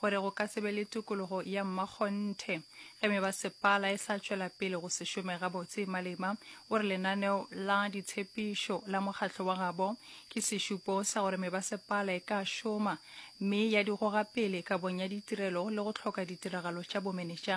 gore go ka se be le tokologo ya mmakgonthe. Ge mebasepala e sa tšwela pele go se šome gabotse, Malema o re lenaneo la ditshepišo la mokgatlo wa gabo ke sešupo sa gore mebasepala e ka šoma mme ya di goga pele kabong ya ditirelo le go hloka ditiragalo tša bomenetša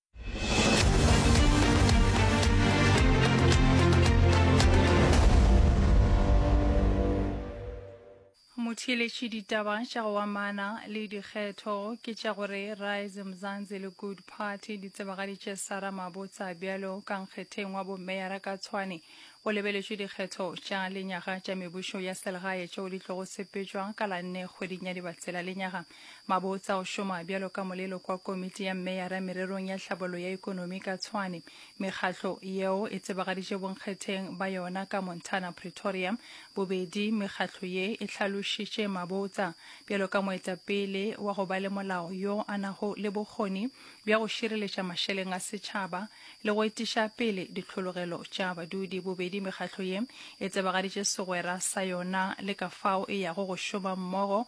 motheeletše ditaba tša go amana le dikgetho ke tša gore rise mzanzi le good party di tsebagaditše sara mabotsa bjalo ka nkgetheng wa bomeyara ka tshwane o lebeletše dikgetho tša lenyaga tša mebušo ya selegae tšeo di tlogo sepetšwa ka la nne kgweding ya dibatsela lenyaga Mabotsa o šoma bjalo ka molelo kwa Komiti ya Mmeyara mererong ya tlhabollo ya ikonomi ka Tshwane. Mekgatlo yeo e tsebagaditše bonkgetheng ba yona ka Montana Pretoria. Bobedi mekgatlo ye e hlalošitše Mabotsa bjalo ka moetapele wa go ba le molao yo a nago le bokgoni bja go šireletša mašeleng a setšhaba le go etiša pele ditlhologelo tša badudi. Bobedi mekgatlo ye e tsebagaditše segwera sa yona le ka fao e yago go šoma mmogo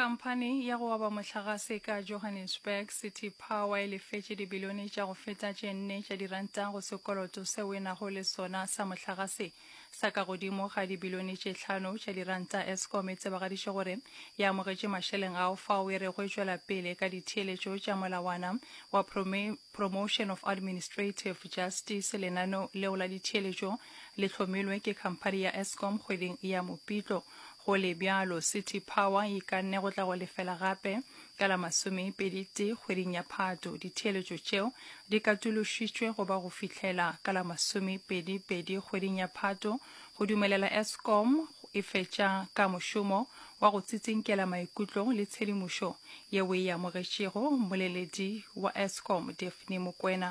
khamphani ya go aba mohlagase ka johannesburg city power e lefetše dibilione tša go feta tše nne tša diranta go sekoloto seo e nago le sona sa mohlagase sa ka godimo ga dibilione tše hlano tša dirand tsa Eskom e tsebagaditše gore e amogetše mašeleng ao fao e rego e tšwela pele ka ditheeletšo tša molawana wa Promotion of Administrative Justice. Lenaneo leo la ditheeletšo le hlomilwe ke khamphani ya Eskom kgweding ya Mopitlo. Go le bjalo, City Power e ikanne go tla go lefela gape Ka la masomepedi tee kgweding ya Phato, ditheeletšo tšeo di katološitšwe go ba go fihlela ka la masomepedi pedi kgweding ya Phato go dumelela Eskom e fetša ka mošomo wa go tsitsinkela maikutlo le tshedimošo yeo e amogetšego mmoleledi wa Eskom Daphne Mokwena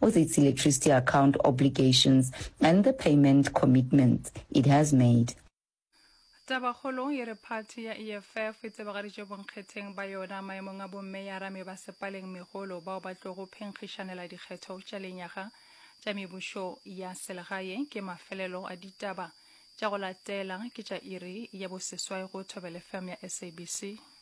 with its electricity account obligations and the payment commitments it has made. Tabakgolo e re phathi ya EFF e tsebagaditše bonkgetheng ba yona maemong a bommeyara mebasepaleng megolo bao ba tlogo phenkgišanela dikgetho tša lenyaga tša mebušo ya selegae ke mafelelo a ditaba tša go latela ke tša iri ya boseswai go Thobelefm ya SABC.